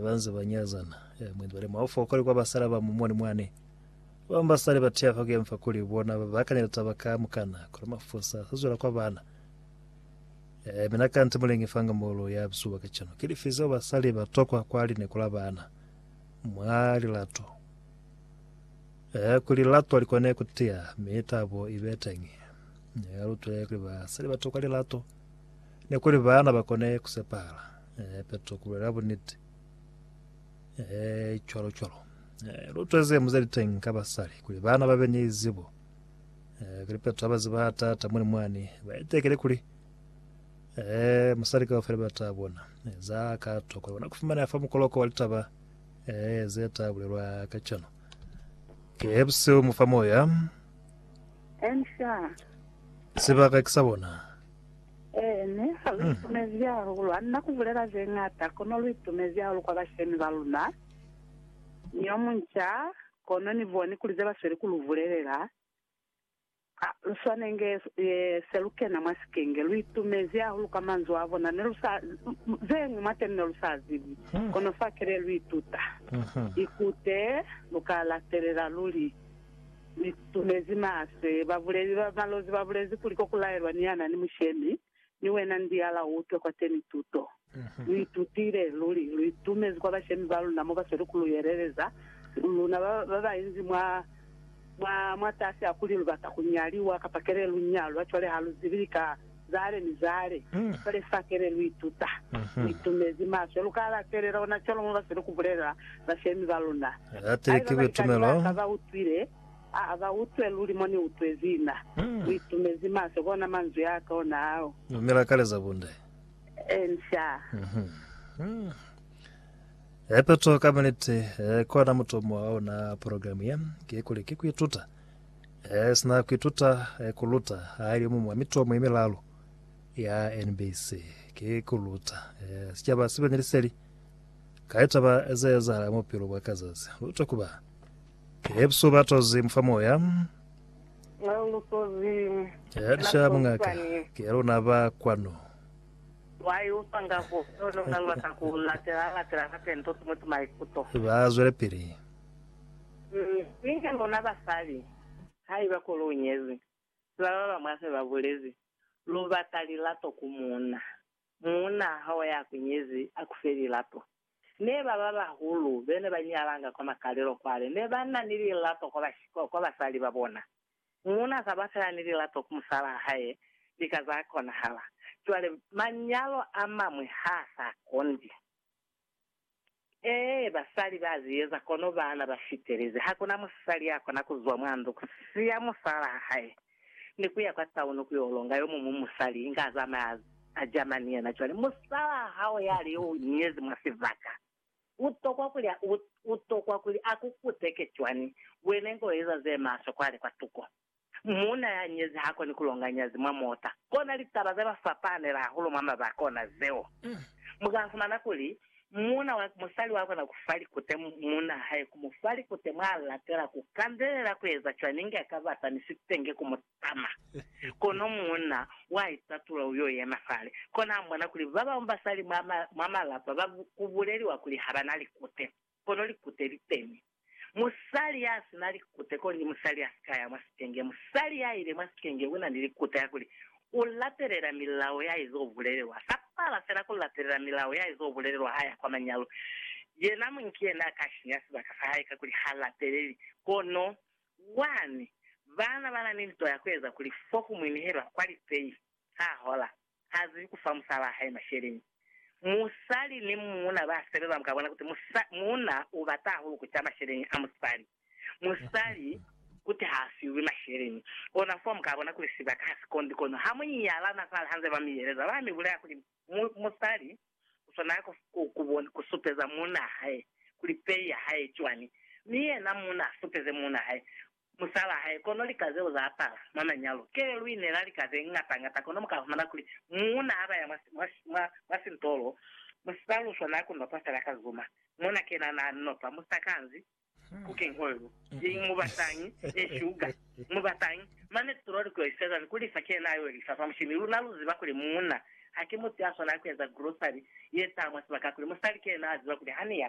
Banze ba nyazana. Eh, mwendi bale mwa ufa ukali kwa basala ba mumoni mwane. Babang basali ba tiya fa kuya mfa kuli bona ba bakanya litaba ka mukana, kono mafusa sa zwela kwa bana. Eh, mina ka nte mulengi fanga molo ya bzuba ka chano. Kili fi zeo basali ba tokwa kwa lineko la bana. Mwa lilato. Eh, kuli lilato likone kutiya, mi tabo ibe tengi. Eh, lutwe kuli basali ba tokwa lilato. Ne kuli bana bakone kusepala. Ee, Petro, ku bulela buniti. Ee, cwalo cwalo. Ee, lu tweze muze liteng ka basali, kuli bana ba be ni zibo. Ee, kuli Petro aba ziba tata muli mwani, ba itekele kuli, ee, musali kaufela ba ta bona. Ee, za ka tokwa bona kufumaneha fa mukoloko wa litaba, ee, ze ta bulelwa ka cano. Ke buseu mu fa moya, Ensha. sibaka ki sa bona. Ee, mi ha lu itumezi hahulu. Ha ni na ku bulela ze ñata, kono lu itumezi hahulu kwa bashemi ba luna. Ni yo munca, kono ni boni kuli ze ba sweli ku lu bulelela, ha lu swane inge se lu kena mwa sikenge. Lu itumezi hahulu ka manzwi a bona. Ne lu sa, ze ñwi mwateni ne lu sa zibi, kono fakele lu ituta. Ikute lu ka latelela luli. Ni tumezi maswe. Babuleli ba malozi ba bulezi kuli ko ku laelwa ni ya na ni mushemi, ni wena ndiala u utwe kwateni tuto. Lu itutile luli. Lu itumezi kwa bashemi ba luna mo ba sweli ku lu yeleleza, luna ba ba ba inzi mwa, mwa, mwatasi a kuli lu bata ku nyaliwa, kapa kele lu nyalwa, cwale ha lu zibi lika. Zale ni zale, kale fa kele lu ituta, lu itumezi maswe. Lu ka alafelela ona cwalo mo ba sile ku bulelela bashemi ba luna. Haiba balikani ba ka ba utwile, a ba utwe luli mo ni utwezi na. Lu itumezi maswe ku ona manzwi a ka ona ao. Lu mela kale za bunde. Encia. Hepeto ka buniti, ku ona mutomo wa ona programe ye, kikuli ki ku ituta Sina kuituta kuluta ali omu mwa mitomo yemilalu ya NBC. Ki kuluta sicaba sibe ni liseli ka litaba zeezahala mwa bupilo bwa ka zazi. Luta ku ba Yesu batozi mufa moya. Lisha mungaka, ki luna ba kwanu. Ba zwelepili. Mi ni luna basali, haiba ku lu nyezi, ziba ba bañwi hase ba bulezi, lu bata lilato ku muuna. Muuna ha o ya ku nyezi, a ku fe lilato. Ne ba ba bahulu be ne ba nyalanga kwa makalelo kwale ne ba na ni lilato kwa basali ba bona. Muuna sa ba fela ni lilato ku musalaa hae lika za konahala. Cwale, manyalo a mañwi ha sa kondi. Ee, basali ba zi eza, kono baana ba fitelezi. Ha ku na musali ya kona ku zwa mwa ndu, ku siya musalala wa hae, ni ku ya kwa tauni ku yo longa yo muñwi musali, inge a zamaya a jama ni yena. Cwale, musalala wa hao ya li yo u nyezi mwa sibaka, u tokwa kuli a, u, u tokwa kuli a ku kuteke cwani wena inge u eza ze maswe kwale kwa tuko? Muuna ya nyezi ha koni ku longa nyazi mwa mota. Ko na litaba ze ba fapanela hahulu mwa mabaka ona zeo. Mu ka fumana kuli, Muuna wa musali wa kona ku fa likute muuna hae, ku mu fa likute mwa latela, ku kandelela ku eza cwañi inge a ka bata mi sitenge ku mu tama. Kono muuna wa itatula u yo yema fale, kona a bona kuli ba bañwi basali mwa malapa ba ku buleliwa kuli ha ba na likute. kono likute liteni. Musali ya si na likute kuli musali ya si ka ya mwa sikenge. Musali ya ile mwa sikenge u na ni likute ya kuli u latelela milao ya izo bulelelwa. Sa pala fela ku latelela milao ya izo bulelelwa ha ya kwa manyalo. Yena muñi ki yena a ka sinya sibaka sa hae kakuli ha lateleli. Kono, wani, baana ba na ni nto ya ku eza kuli fo ku mwinehelwa kwa lipei, ha hola. ha zibi ku fa musala wa hae masheleñi. Musali ni muuna ba sebeza ba ka bona kuti muuna u bata hahulu ku ca masheleñi a musali, musali kuti ha fiwi masheleñi. Kona fo mu ka bona kuli sibaka ha si kondi. Kono ha mu nyalana fale ha nze ba mi yeleza, ba mi bulela kuli musali u swanela ku supeza muuna hae kuli pei ya hae cwani, mi yena muuna a supeze muuna hae musalaa hae, kono lika zeo za apala mwa manyalo kee lwi ne la lika ze ñata ñata, kono mu ka humana kuli muuna ha baya mwa, mwa, mwa, mwa sintolo, musipaa luswa na ku notwa fela ka zuma, mona ke na, na notwa, mu sa kanzi cooking oil, i, mu batañi, ni sugar, mu batañi, mane tulo li ku yo i fezani ku lifa, ke na yo i lifa fa mushini. Luna lu ziba kuli muuna haki mutu ya swanaa ku eza grocery ye taha mwa sibaka, kuli musali ke na a ziba kuli ha ni ya,